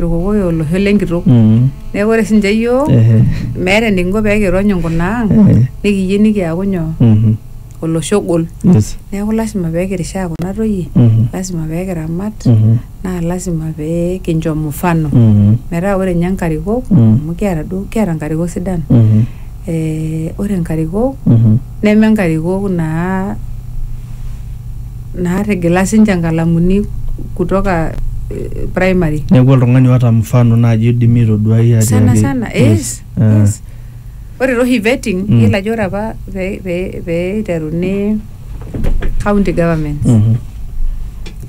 irkokoyo olosho lenkitok Mm. neeku ore sinche yiok Ehe. meeta enikinko pee kirony inkuna ang Eh. nikiyieu nikiaku nyoo Mhm. olosho ogol Yes. neeku lasima pee kirishaa kuna toyie Mhm. lasima pee kiramat Mhm. naa lasima pee kincho mfano Mhm. metaa ore ninye nkarikok Mm. amu kiata duo kiata nkarikok sidan Mhm. eh, ore nkarikok Mhm. neme nkarikok naa naatigila sinche nkalamuni kutoka eh, primary neeku oltung'ani oota mfano naaji oidimi aitoduai atiaki sana sana yes, Ah. yes. ore taa oshi vetting Mm. yiolo ajo ore apa pee pee- pee iteruni county government Mhm.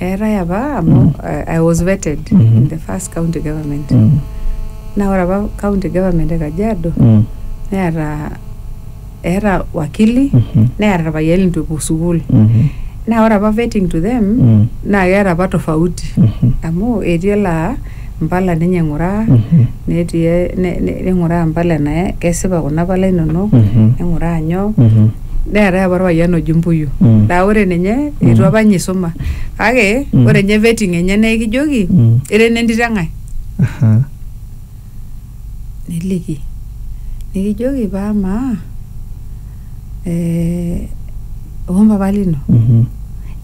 eetae apa amu Mm. eh, I was vetted Mhm. in the first county government Mm. naa ore apa county government e Kajiado Mm. neeta eeta wakili Mhm. neeta irpayiani litu epuo sukuul Mhm. naa ore apa vetting to them Mm. naa keeta apa tofauti Mhm. amu etii elaa impala ninye ing'uraa Mhm. netii e- ne- ne- ning'uraa impala enae kesipa kuna pala inonok Mhm. ning'uraa nyoo Mhm. neetae apa orpayian oji mbuyu Mm. naa ore ninye Mm. eitu apa ninye isuma kake Mm. ore ninye vetting enye naa ekijoki Mm. ira enentito eng'ae Aha. niliki nikijoki paa amaa eh, ompapa lino Mhm.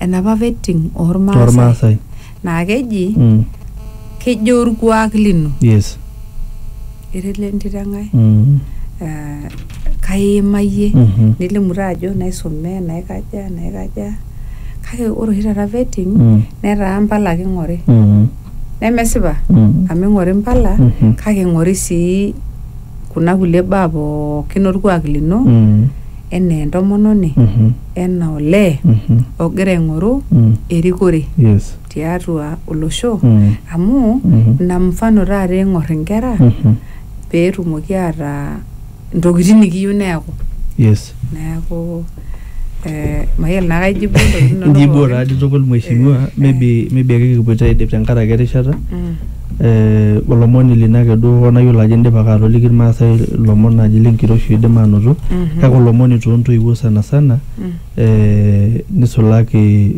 enapa vetting ormaasai Ormaasai. naa keji Mm. kejo orkuak lino Yes. irele entito enkae Mm. eh, kaiimayie Mhm. nilimu taa ajo naisome naikaja naikaja kake ore oshi taata vetting Mm. netaa mpala ake ing'ori Mm. nemesipa Mm. amu ing'ori mpala Mhm. kake ing'ori sii kuna kulie baa pookin orkuak lino Mm. enaa entomononi, Mhm. enaa olee Mhm. ogira aing'oru Mm. erikore Yes. tiatua olosho Mm. amu Mhm. ina mfano taata eing'or inkera Mhm. peetumoki ataa intokitin nikiyieu neeku. Yes. Neeku eh, mayiolo naa kaijibu intokitin inonok Ijibuo pookin. taadi tukul mheshimiwa, Eh. maybe maybe ake kipuoito aidip tenkaraki erishata. Mm. olomoni lino ake duo hoo nayiolo ajo indipa ake atoliki irmaasai ilomon naaji lenkiroshi oidim aanoto kake olomoni toontoiwuo sana sana eh, nisulaki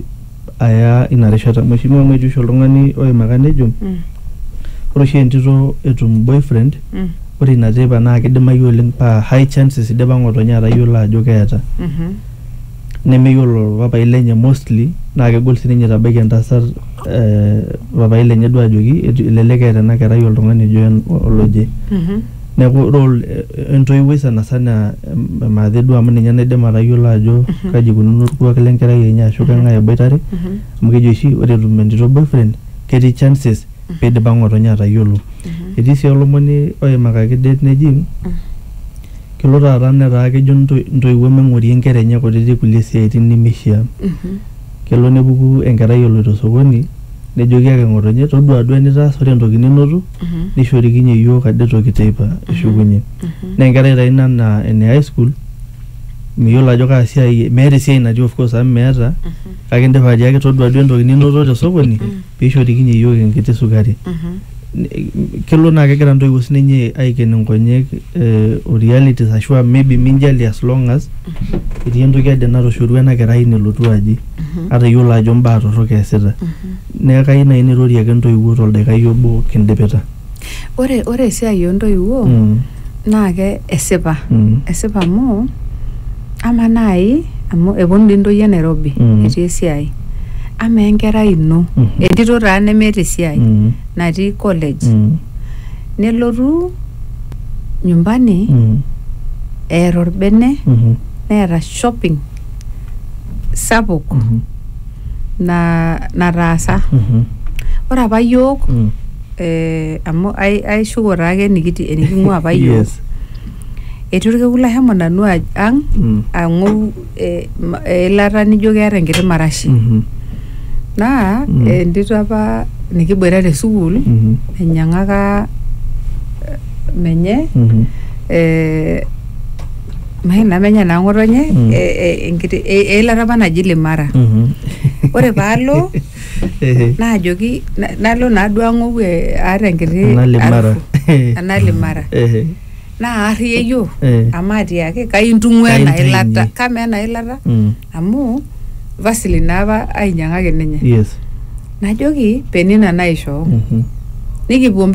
aya ina rishata mheshimiwa amu etii oshi oltung'ani oimaka nejo ore oshi entito etum boyfriend ore ina teipa naa kidimayu oleng paa high chances idipa ng'otonye atayiolo ajo keeta. nemeyiolo papaai lenye mostly naa kegol sininye itabaiki entasat eh, papaai lenye duo ajoki etu- elelek eeta ena kerai oltung'ani ojo en- oloje Mhm. neeku role eh, entoiwuoi sanasana em- emaathe duo amu ninye naidim atayiolo ajo kaji ikununo orkuak lenkerai enye ashu keng'ae eboitare Mhm. amu keji oshi ore etum entito boyfriend ketii chances pidipa ng'otonye atayiolo etii sii olomoni oimakaki det neji kelo taata netaa kejo into- intoiwuo meng'orie inkera enye kutitik kulie siaitin nemeishia kelo nepuku enkerai eloito sokoni nejoki ake ng'otonye todua duo enitaasa ore entoki ninoto nishorikinye iyiook ade toki teipa ishukunye naa enkerai taa ina naa ene high school miyiolo ajo kaa siai meeta esiai natii of course amu meeta kake indipa atiaki todua duo entoki ninoto tesokoni peishorikinye iyiook enkiti sukari N- kelo naa kegira ntoiwuo sininye aiken nkonyek eh, o realities ashu a maybe minjali as long as etii entoki ade natoshorua ena kerai nelotu aji ata iyiolo ajo mbaa torrok eesita neeku kayieu naaji nairorie ake ntoiwuo toldakikai obo kindipita. Ore ore esiai ontoiwuo Mm. naa ke esipa Mm. esipa amu ama naai amu eponu dii ntoyie Nairobi Mm. etii esiai ama enkerai ino Mhm. entito taa nemeeta esiai Mm. natii college Mm. nelotu nyumbani Mm. eeta orbene Mhm. neeta shopping sapuk Mhm. na nataasa Mhm. ore apa yiok Mm. eh, amu ai- aishuko taake enikiti- eniking'ua apa yiok Yes. etii orkekun lashomo nanu aj- ang Mm. ang'ou eh, ma- eilata nijo keeta enkiti marashi Mhm. naa Mm. eh, entito apa nikiboita te sukuul Mhm. enyiang'aka eh, menye Mhm. eh, maina menye naa ng'otonye Mm. eh, eh, enkiti e- eilata apa naji limara Mhm. ore paalo Ehe. naajoki na- nalo naaduo ang'ou eh, aata enkiti Enalimara. harufu. enalimara Ehe. naa arriyio Eh. amu atiaki kai intung'ua ena Kaintainyie. ilata kamaa ena ilata Mm. amu vasili naapa ainyang'aki ninye Yes. najoki penina naishoo Mhm. nikipuo mpaka